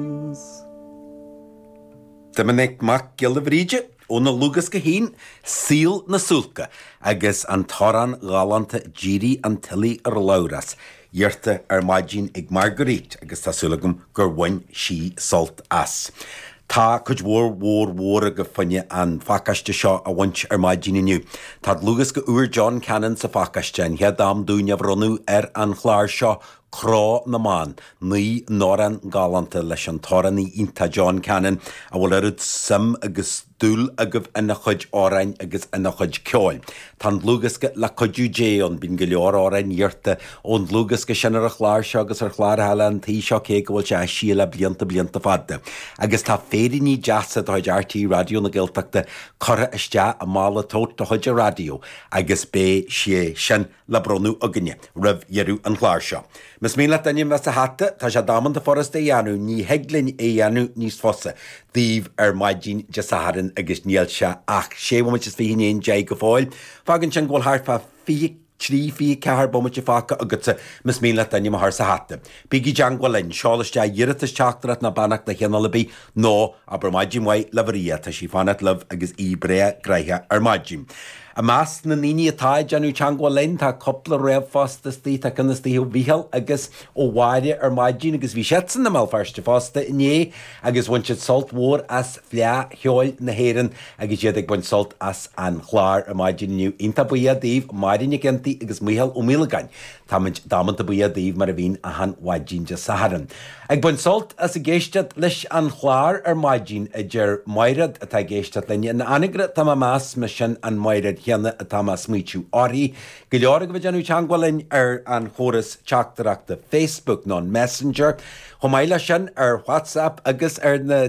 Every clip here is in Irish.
Collins. Doiminic Mac Giolla Bhríde, óna dhlúthdhiosca féin Saol na Suáilce agus an t-amhrán galánta 'D'éirigh an tuile ar Labhrás', iarrta ar maidin ag Marguerite agus tá súil agam gur bhain sí sult as. Tá cuid mhór mhór mhór agaibh ag iarraidh an pacáiste seo a bhaint ar maidin inniu. Tá dlúthdhiosca úr John Cannon sa phacáiste, an chéad am dúinn é a bhronnadh ar an chlár seo Crá na mBan, naoi n-amhrán galánta leis an t-amhránaí iontach John Cannon a bhfuil oiread suim agus dúil agaibh ina chuid amhráin agus ina chuid ceoil. Tá an dlúthdhiosca Le Cuidiú Dé ann, bíonn go leor amhráin iarrtha ón dlúthdhiosca sin ar an chlár seo agus ar chláir eile an tí seo cé go bhfuil sé eisithe le blianta blianta fada. Agus tá féiríní deasa de chuid RTÉ Raidió na Gaeltachta curtha isteach i mála tote de chuid an raidió agus beidh sé sin le bronnadh againne roimh dheireadh an chláir seo. Más mian leat d'ainm a bheith sa hata, tá sé damanta furast a dhéanamh, ní thig linn é a dhéanamh níos fusa daoibh ar maidin Dé Sathairn agus níl sé ach sé bhomaite is fiche i ndiaidh an deich go fóill. Fágann sin go bhfuil thart fá fiche trí, fiche ceathair bomaite fágtha agatsa más mian leat d'ainm a chur sa hata. Bígí i dteangmháil linn, seol isteach iarratas teachtaireacht ná beannacht de chineál ar bith nó abair maidin mhaith le Maria, tá sí ag fanacht libh agus í breá gnoitheach ar maidin. I measc na ndaoine atá ag déanamh teangmháil linn tá cúpla ríomhphost istigh, tá ceann istigh ó Mhícheál agus ó Mháire ar maidin agus bhí siadsan i mBéal Feirste fosta inné agus bhain siad sult mór as Fleadh Cheoil na hÉireann agus iad ag baint sult as an chlár ar maidin inniu. Iontach buíoch daoibh, Máire Nic Fhionntaigh agus Mícheál Ó Maolagáin. Táimid damanta buíoch daoibh mar a bhíonn achan mhaidin Dé Sathairn. Ag baint sult as a bheith ag éisteacht leis an chlár ar maidin, a deir Maighread, atá ag éisteacht linn in Anagaire tá mé ag meas más í sin an Maighread chéanna atá mé ag smaoitiú uirthi. Go leor agaibh ag déanamh teagmháil linn ar an chóras teachtaireachta Facebook nó an Messenger. Chomh maith leis sin ar WhatsApp agus ar na.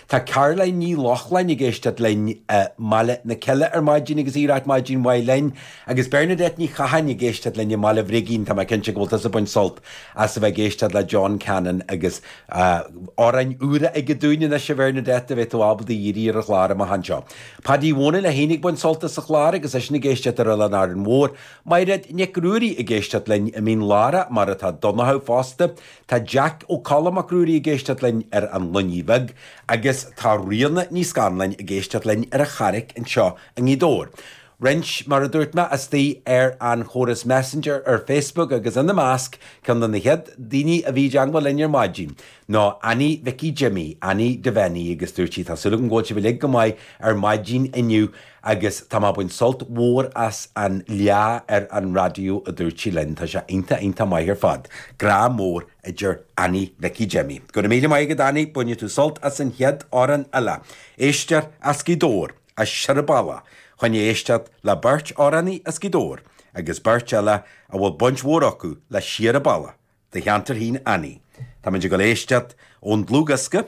Tá Caroline Ní Lochlainn ag éisteacht linn i mBaile na Cille ar maidin agus í ag ráit maidin mhaith linn. Agus Bernadette Ní Chatháin ag éisteacht linn i mBaile Bhrigín, tá mé cinnte go bhfuil tusa ag baint sult as a bheith ag éisteacht le John Cannon agus amhráin úra aige dúinn anois, a Bhernadette, a bheidh tú ábalta a iarraidh ar an chlár amach anseo. Padaí Mhonaí Ó Lochlainn ag baint sult as an chlár agus eisean ag éisteacht ar Oileán Árainn Mhór. Maighread Nic Ruairí ag éisteacht linn i Mín Lárach, mar atá Donnchadh fosta. Tá Jeaic Ó Colla Mac Ruairí ag éisteacht linn ar An Loinnir Bheag agus tá Ríona Ní Scanláin ag éisteacht linn ar an Charraic anseo i nGaoth Dobhair. Roinnt, mar a dúirt mé, istigh ar an chóras Messenger ar Facebook agus ina measc, ceann de na chéad daoine a bhí i dteangmháil linn ar maidin, ná Annie Mhicí Jimí, Annie Devenny agus dúirt sí, tá súil agam go bhfuil sibh uilig go maith ar maidin inniu, Agus táim á baint sult mhór as an lá ar an raidió a dúirt sí linn. Tá sé iontach, iontach maith ar fad. Grá mór ó Annie, Mhicí Jimí. Go raibh míle maith agat Annie, bainfidh tú sult as an chéad amhrán eile. Is tú as Gaoth Dobhair, as Srath na Bruaí, chun éisteacht le beirt amhránaí as Gaoth Dobhair, agus beirt eile a bhfuil baint mhór acu le Srath na Bruaí, do cheantar féin Annie. Táimid ag dul a éisteacht ón dlúthdhiosca.